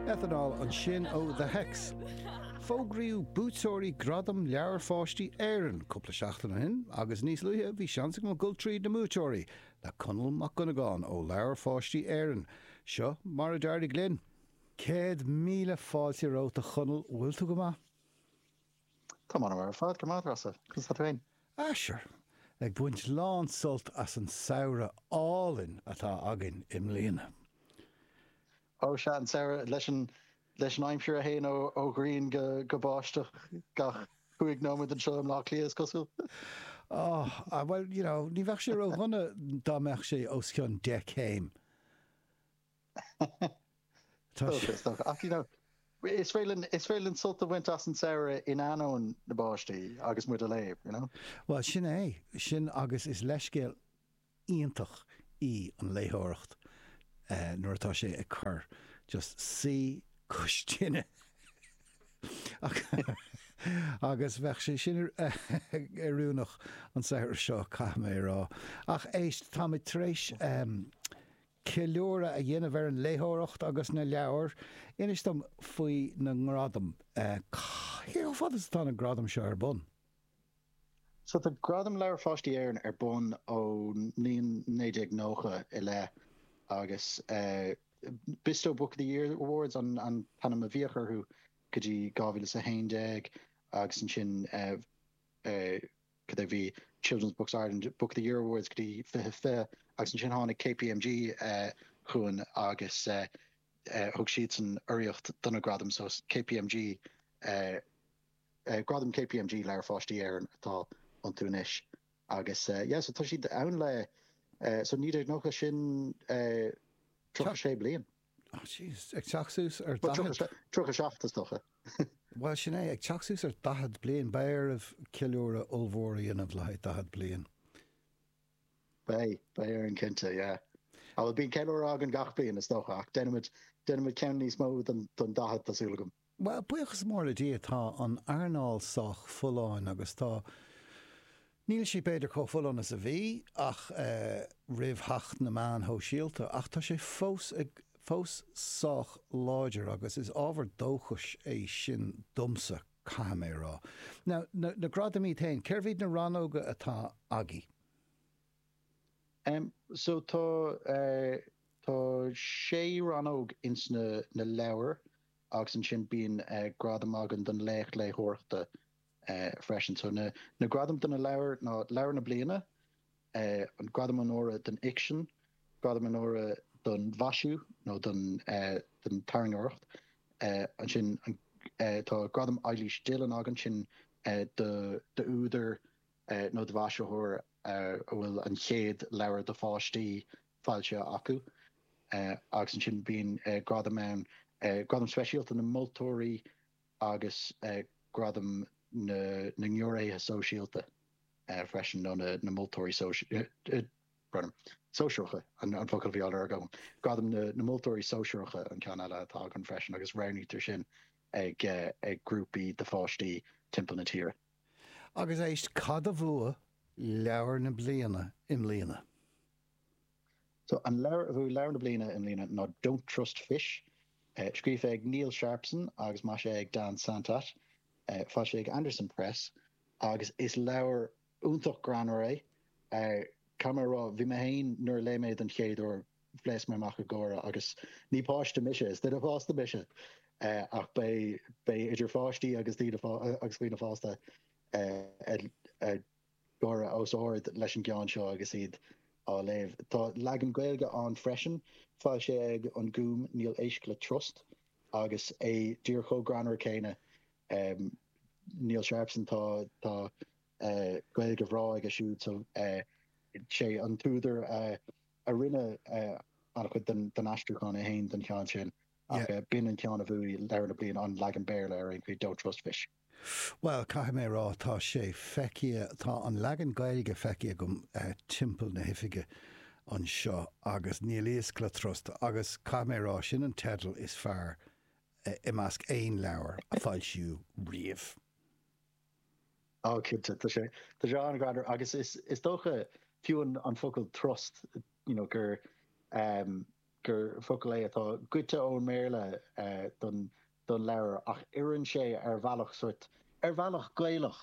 Ethanol ansin ó The Hex. Fógraíodh buaiteoirí Gradaim Leabhair Pháistí Éireann cúpla seachtain ó shin agus níos luaithe bhí seans agam dul tríd na mbuaiteoirí le Conall Mac Dhonnagáin ó Leabhair Pháistí Éireann. Seo mar a d'éirigh linn. Céad míle fáilte romhat a Chonall, bhfuil tú go maith? Tá mé thar barr ar fad, go raibh maith agat Treasa, conas atá tú fhéin? Ah sure, ag baint lán sult as an samhradh álainn atá againn i mbliana. Ó sea, an samhradh leis an leis an aimsir a théann ó ghrian go báisteach gach cúig nóiméad anseo i mBleá Cliath is cosúil. Oh, ah bhuel, you know, ní bheadh sé ró-dhona dá mbeadh sé os cionn deich céim. Tá sé. Is dócha. Ach you know, is féidir linn, is féidir linn sult a bhaint as an samhradh in ainneoin na báistí agus muid ag léamh, you know? Bhuel, sin é. Sin agus is leithscéal iontach í an léitheoireacht nuair atá sé ag cur. Just suí cois tine agus bheadh sé sin oiriúnach an samhradh seo, caithfidh mé a rá. Ach éist, táimid tar éis. ceiliúradh a dhéanamh ar an léitheoireacht agus na leabhair, inis dom faoi na ngradaim. Cé chomh fada is atá na gradaim seo ar bun? So tá Gradaim Leabhair Pháistí Éireann ar bun ón mbliain 1990 i leith agus Bisto Book of the Year Awards an t-ainm a bhíodh orthu go dtí 2011 agus ansin go dtí go raibh Children's Books Ireland Book of the Year Awards go dtí 2020 agus ansin tháinig KPMG chugainn agus thug siadsan urraíocht do na gradaim so KPMG gradaim KPMG Leabhair Pháistí Éireann atá iontu anois agus yeah so tá siad ann le so 1990 sin 36 bliain. Jesus, ag teacht suas ar daichead. Bhuel, tríocha sé, tríocha seacht, is dócha. Bhuel, sin é, ag teacht suas ar dhaichead bliain. Beidh oraibh ceiliúradh ollmhór a dhéanamh le haghaidh daichead bliain. Beidh, beidh orainn, cinnte, yeah. Á, bhuel, bíonn ceiliúradh againn gach bliain, is dócha, ach déanfaimid, déanfaimid ceann níos mó don, don daichead, tá súil agam. Bhuel, buíochas mór le Dia, tá an earnáil sách folláin agus tá. níl sí b'fhéidir chomh folláin is a bhí, ach eh. roimh theacht na meáin shóisialta, ach tá sé fós ag. fós sách láidir agus is ábhar dóchais é sin domsa, caithfidh mé a rá. Now, na, na gradaim iad féin, cé hiad na rannóga atá agaibh? Em, so tá eh. tá sé rannóg ins na, na leabhair, agus ansin bíonn gradam againn don Laoch Léitheoireachta freisin. So na na gradaim do na leabhair ná Leabhar na Bliana, an Gradam Onóra don Fhicsean, Gradam Onóra don Mhaisiú nó don don tarraingeoireacht, ansin tá Gradam Eilís Dillon againn, sin d'údar nó do mhaisitheoir a bhfuil an chéad leabhar do pháistí foilsithe acu. Agus ansin bíonn gradaim ann, Gradam Speisialta na Moltóirí agus Gradam na nGiúiréithe Sóisialta freisin, nó na Moltóirí ó Sóisearacha, an focal a bhí á lorg agam, Gradam na Moltóirí Sóisearacha an ceann eile atá againn freisin agus roghnaítear sin ag grúpaí de pháistí timpeall na tíre. Agus éist, cad a bhuaigh Leabhar na Bliana i mbliana? So an leabhar a bhuaigh Leabhar na Bliana i mbliana ná Don't Trust Fish, scríofa ag Neil Sharpson agus maisithe ag Dan Santat, foilsithe ag Andersen Press, agus is leabhar iontach greannmhar é. Caithfidh mé a rá, bhí mé féin, nuair a léigh mé é don chéad uair, phléasc mé amach ag gáire, agus ní páiste mise, is duine fásta mise, ach beidh beidh idir pháistí agus dhaoine fásta ag gáire os ard leis an gceann seo agus iad á léamh. Tá leagan Gaeilge ann freisin, foilsithe ag An Gúm, Níl Éisc le Trust, agus é díreach chomh greannmhar céanna. Neil Sharpson, tá tá Gaeilge bhreá aige siúd, so sé an t-údar a rinne an-chuid den aistriúchán é fhéin don cheann sin, ach b'in an ceann a bhuaigh Leabhar na Bliana, an leagan Béarla ar aon chaoi, Don't Trust Fish. Bhuel, caithfidh mé a rá, tá sé feicthe, tá an leagan Gaeilge feicthe agam timpeall na hoifige anseo agus Níl Éisc le Trust agus caithfidh mé a rá, sin an teideal is fearr i measc aon leabhar a foilsíodh riamh. Oh, cinnte, tá sé, tá sé an-ghreannmhar agus is, is dócha, fiú an focal trust, you know, gur, gur focal é atá goidte ón mBéarla don don leabhar ach oireann sé ar bhealach sórt, ar bhealach Gaelach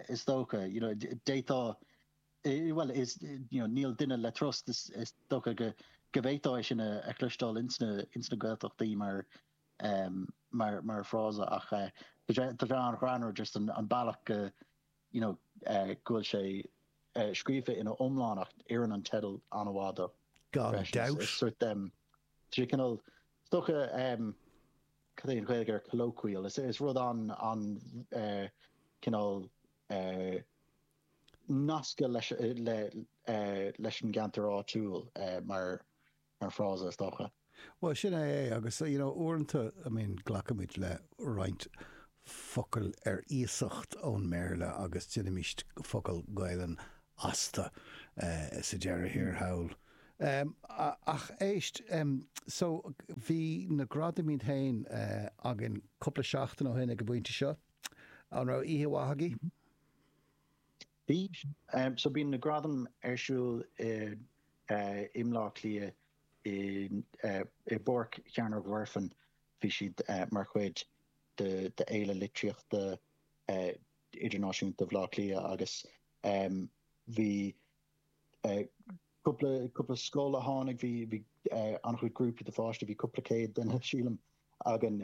is dócha, you know d'fhéadfadh, bhuel is, you know níl duine le trust, is dócha go bhféadfá é sin a chloisteáil ins na Gaeltachtaí mar mar fhrása ach tá sé an-ghreannmhar just an bealach go, you know go bhfuil sé scríofa ina iomlán ach oireann an teideal an-mhaith dó freisin. Is sórt um, cineál, is dócha um, cad é an Ghaeilge ar colloquial, is, is rud an, an uh, cineál uh, nasctha leis, le, uh, leis an gceantar áitiúil uh, mar mar frása, is dócha. Bhuel, sin é é. Agus, you know, uaireanta, I mean, glacaimid le roinnt focail ar iasacht ón mBéarla agus déanaimist focal Gaelainne astu sa deireadh thiar thall. Ach éist, so, bhí na gradaim iad fhéin againn cupla seachtain ó shin ag an bpointe seo. An raibh oíche mhaith agaibh? Bhí, so bíonn na gradaim ar siúl i mBleá Cliath i bPáirc Chearnóg Mhuirfean, bhí siad mar chuid de Fhéile Litríochta Idirnáisiúnta Bhleá Cliath agus bhí cúpla scoil a tháinig, bhí an-chuid grúpaí de pháistí, bhí cúpla céad duine sílim againn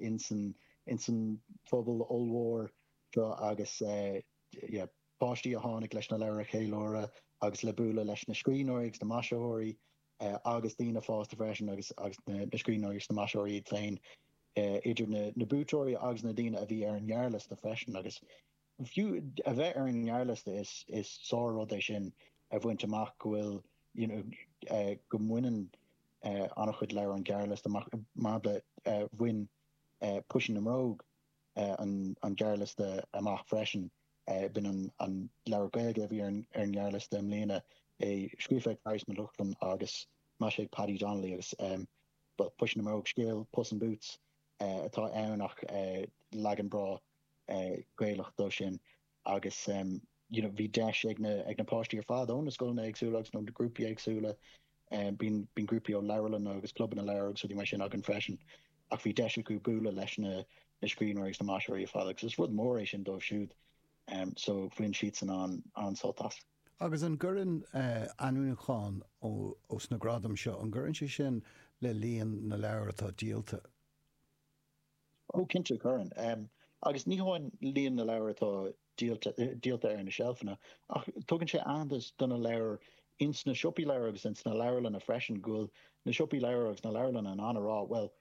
insan phuball ollmhór seo agus. yeah páistí a tháinig leis na leabhair a cheiliúradh agus le bualadh leis na scríbhneoirí agus na maisitheoirí agus daoine fásta freisin agus na scríbhneoirí agus na maisitheoirí iad féin idir na buaiteoirí agus na daoine a bhí ar an ngearrliosta freisin agus fiú a bheith ar an ngearrliosta is is sár-rud é sin a bhaint amach go bhfuil you know eh, go mbaineann eh, an-chuid leabhar an gearrliosta mar mar eh, bhain Puisín na mBróg an gearrliosta amach freisin. B'in an leabhar Gaeilge a bhí ar an ngearrliosta i mbliana, é scríofa ag Fearghas Mac Lochlainn agus maisithe ag Paddy Donnelly agus Puisín na mBróg, scéal Puss in Boots atá ann ach leagan breá Gaelach dó sin. agus you know bhí deis ag na ag na páistí ar fad ó na scoileanna éagsúla agus nó na grúpaí éagsúla um bíonn bíonn grúpaí ó leabharlanna agus clubanna leabhar agus rudaí mar sin againn freisin ach bhí deis acu bualadh leis na na scríbhneoirí agus na maisitheoirí ar fad agus is rud mór é sin dóibh siúd um so bhain siadsan an an-sult as. Agus an gcuireann eh ainmniúchán ó ó sna gradaim seo, an gcuireann sé sin le líon na leabhar atá díolta? Ó, cinnte, cuireann. Agus ní hamháin líon na leabhar atá díolta ar na seilfeanna, ach tugann sé aitheantas do na leabhair ins na siopaí leabhar agus ins na leabharlanna freisin, go bhfuil na siopaí leabhar agus na leabharlanna in ann a rá, bhuel,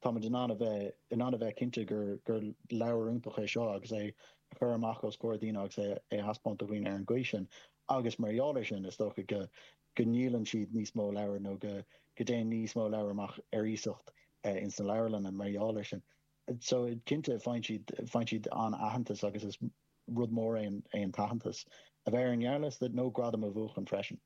táimid in ann a bheith in ann a bheith cinnte gur gur leabhar iontach é seo agus é a chur amach os comhair daoine agus é a thaispeáint do dhaoine ar an gcaoi sin. Agus mar gheall air sin, is dócha go. go ndíolann siad níos mó leabhar nó go dtéann níos mó leabhar amach ar iasacht ins na leabharlanna mar gheall ar sin. So cinnte faigheann siad, faigheann siad an-aitheantas agus is rud mór é an t-aitheantas a bheith ar an ngearrliosta nó gradam a bhuachan freisin.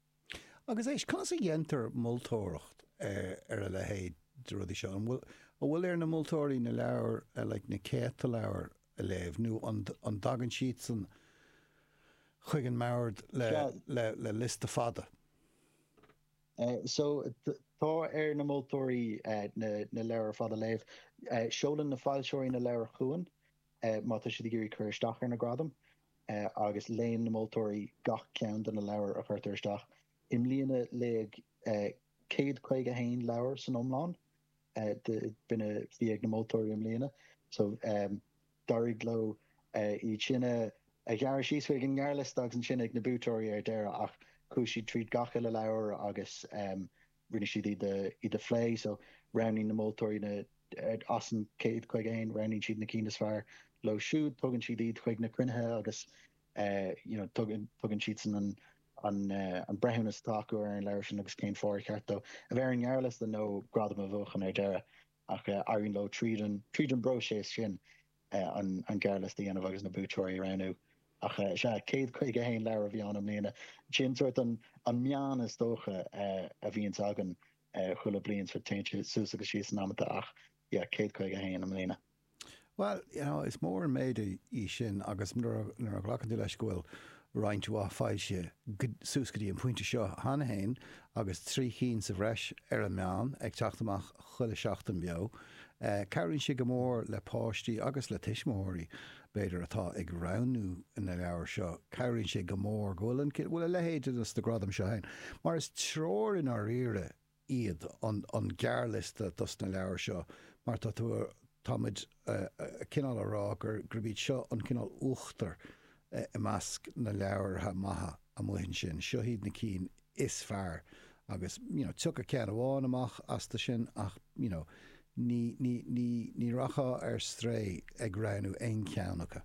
Agus éist, conas a dhéantar moltóireacht ar a leithéid de rudaí seo? An bhfuil ar na moltóirí na leabhair, like na céadta leabhar a léamh, nó an dtagann siadsan chuig an mbord le liosta fada? So, tá ar na moltóirí na leabhair ar fad a léamh. Seolann na foilseoirí na leabhair chugainn má tá siad ag iarraidh cur isteach ar na gradaim, agus léann na moltóirí gach ceann de na leabhair a chuirtear isteach. I mbliana léadh 151 leabhar san iomlán, dá mba iad a bhí ag na moltóirí i mbliana so d'éirigh leo iad sin a ghearradh síos chuig an ngearrliosta agus ansin ag na buaiteoirí ar deireadh ach chuaigh siad tríd gach uile leabhar agus rinne siad iad a phlé so roghnaíonn na moltóirí na, as an 151, roghnaíonn siad na cinn is fearr leo siúd, tugann siad iad chuig na cruinnithe agus you know tugann siadsan an an breithiúnas atá acu ar an leabhar sin agus cén fáth ar cheart dó a bheith ar an ngearrliosta nó gradam a bhuachan ar deireadh, ach éiríonn leo tríd an, tríd an bpróiseas sin an gearrliosta a dhéanamh agus na buaiteoirí a roghnú. Ach sea, céad caoga haon leabhar a bhí ann i mbliana. Sin sórt an meán is dócha a bhíonns againn chuile bliain, téann sé suas agus síos in amanta ach yeah, céad caoga haon i mbliana. Bhuel, you know, is mór an méid í sin agus nuair a ghlacann tú leis go bhfuil roinnt mhaith foilsithe suas go dtí an pointe seo cheana féin agus trí chinn sa bhreis ar an meán ag teacht amach chuile sheachtain beo, cabhraíonn sé go mór le páistí agus le tuismitheoirí, b'fhéidir, atá ag roghnú na leabhar seo. Cabhraíonn sé go mór go bhfuil, go bhfuil a leithéid de na gradaim seo ann mar is treoir i ndáiríre iad, an gearrliosta dos na leabhair seo, mar tá tú, tá muid cineál a rá gurb iad seo an cineál uachtar i measc na leabhartha maithe amuigh ansin, seo iad na cinn is fearr agus you know tiocfaidh ceann amháin amach astu sin ach you know ní, ní, ní, ní rachfá ar strae ag roghnú aon cheann acu.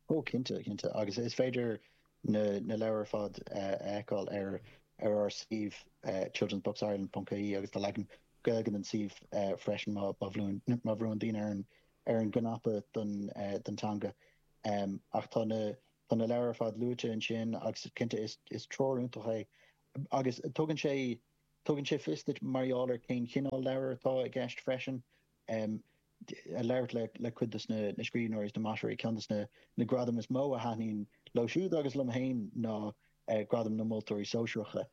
Ó, cinnte, cinnte, agus is féidir na leabhair ar fad a fheiceáil ar ár suíomh childrensbooksireland.ie agus tá leagan Gaeilge den suíomh freisin má bhrúnn daoine ar an gcnaipe don teanga. Ach tá, tá na leabhair ar fad luaite ansin agus cinnte is treoir iontach é agus tugann sé tugann sé fios duit mar gheall ar cén chineál leabhar atá i gceist freisin. a labhairt le cuid de na scríbhneoirí is na maisitheoirí. Ceann de na gradaim is mó a thaitníonn leo siúd agus liom féin ná Gradam na Moltóirí Sóisearacha,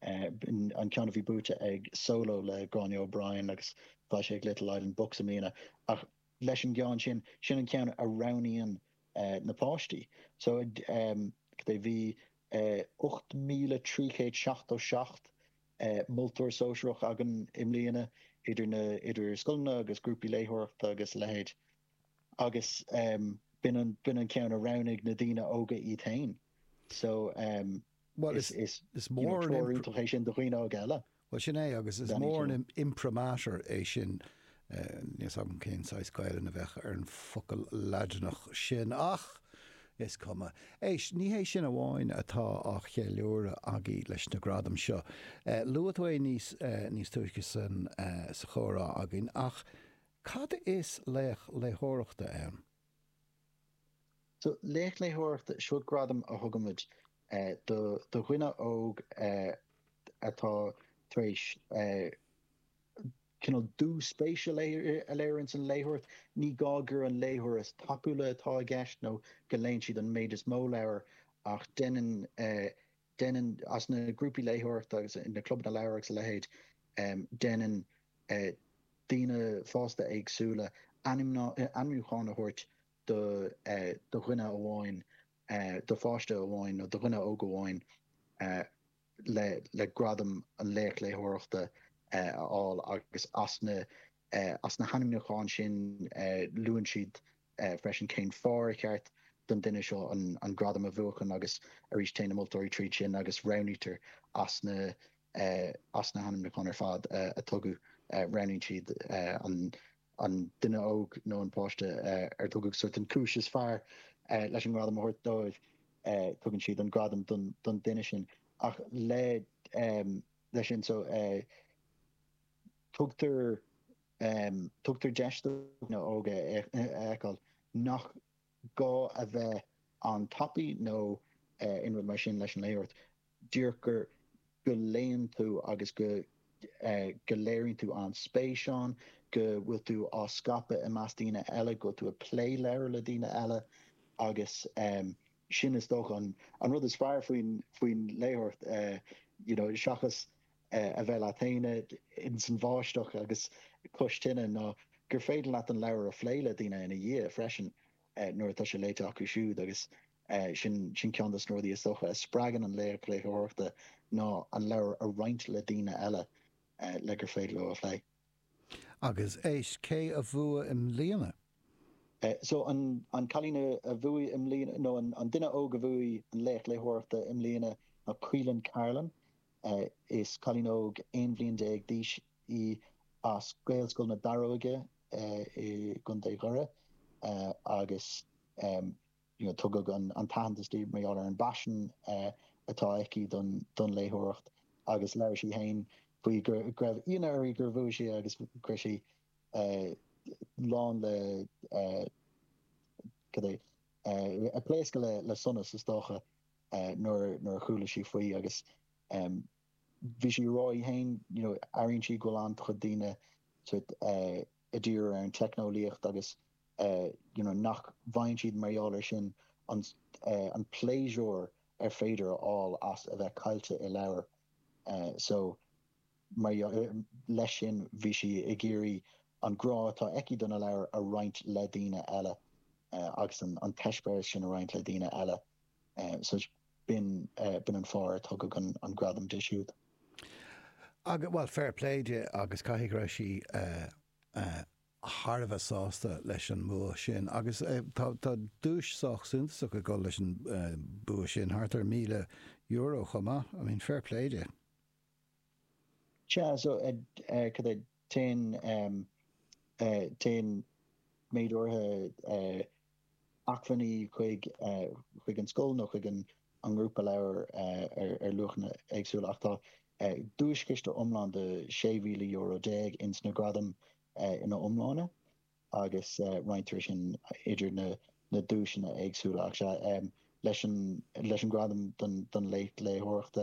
an ceann a bhí buaite ag Solo le Gráinne O'Brien agus foilsithe ag Little Island Books i mbliana. Ach leis an gceann sin, sin an ceann a roghnaíonn na páistí. So, cad é, bhí 8,377 Moltóir sóisearach againn i mbliana, idir, idir scoileanna agus grúpaí léitheoireachta agus a leithéid, agus b'in an ceann a roghnaigh na daoine óga iad féin. So, is treoir iontach é sin do dhaoine óga eile. Bhuel, sin é, agus is mór an imprimatur é sin Níl 's agam cén saghas Gaelainn a bheadh ar an focal Laidineach sin, ach is cuma. Éist, ní hé sin amháin atá á cheiliúradh agaí leis na gradaim seo. Luaigh tú é níos, níos túisce sa, sa chomhrá againn, ach cad is Laoch Léitheoireachta ann? So, Laoch Léitheoireachta, seo gradam a thugaimid do dhuine óg atá tar éis cineál dúspéis a léiriú ins an léitheoireacht. Ní gá gur an léitheoir is tapúla atá i gceist nó go léann siad an méid is mó leabhar ach deineann, deineann, as na grúpaí léitheoireachta agus na clubanna leabhar agus a leithéid, deineann daoine fásta éagsúla ainmniúchán a thabhairt do dhuine amháin, do pháiste amháin nó do dhuine óg amháin le gradam an laoch léitheoireachta a fháil agus as na, as na hainmniúcháin sin luann siad freisin cén fáth ar cheart don duine seo an gradam a bhuachan agus arís téann na moltóirí tríd sin agus roghnaítear as na, as na hainmniúcháin ar fad a tugadh roghnaíonn siad an duine óg nó an páiste ar tugadh sort an chúis is fearr leis an ngradam a thabhairt dóibh. tugann siad an gradam don duine sin ach le, leis sin so tugtar, tugtar deis do dhaoine óga a fheiceáil nach gá a bheith an-tapaidh nó aon rud mar sin leis an léitheoireacht. díreach go léann tú agus go, go léiríonn tú an-spéis ann, go bhfuil tú á scaipeadh i measc daoine eile, go bhfuil tú ag plé leabhair le daoine eile agus sin is dócha an rud is fearr faoi, faoin léitheoireacht you know seachas a bheith leat féin insan bháisteach agus cois tine ná gur féidir leat an leabhar a phlé le daoine ina dhiaidh freisin nuair atá sé léite acu siúd agus Sin ceann de na rudaí is dócha a spreagann an laoch léitheoireachta ná an leabhar a roinnt le daoine eile le gur féidir leo a phlé. Agus éist, cé a bhuaigh i mbliana? So, an cailín a bhuaigh i mbliana, nó an duine óg a bhuaigh an laoch léitheoireachta i mbliana ná Caoilfhionn Carolan. Is cailín óg aon bhliain déag d'aois í as Gaelscoil na Daróige i gContae Dhoire agus Tugadh an t-aitheantas di mar gheall ar an bpaisean atá aici don léitheoireacht agus labhair sí féin faoi go raibh ionadh uirthi gur bhuaigh sí agus go raibh sí lán le cad é ag pléascadh le sonas is dócha nuair a chuala sí faoi agus bhí sí a rá í fhéin you know airíonn sí go bhfuil an-chuid daoine sort eh i dtír ar an teicneolaíocht agus eh you know nach bhfaigheann siad mar gheall ar sin an eh an pléisiúr ar féidir a fháil as a bheith caillte i leabhar eh so mar gheall leis sin bhí sí ag iarraidh an grá atá aici do na leabhair a roinnt le daoine eile eh agus an an t-eispéireas sin a roinnt le daoine eile eh so b'in an fáth ar tugadh an gradam di siúd. Agus, bhuel, fair play di agus caithfidh go raibh sí thar a bheith sásta leis an mbua sin. Agus tá duais sách suntasach ag dul leis an bua sin, thart ar míle euro chomh maith. I mean, fair play di. Sea, so, cad é, téann, téann méid áirithe acmhainní chuig, chuig an scoil nó chuig an ngrúpa leabhar ar luachanna éagsúla ach tá duaischiste iomlán de sé mhíle euro déag ins na gradaim ina iomláine agus roinntear é sin idir na, na duaiseanna éagsúla ach sea, leis an, leis an gradam don, don léitheoireacht,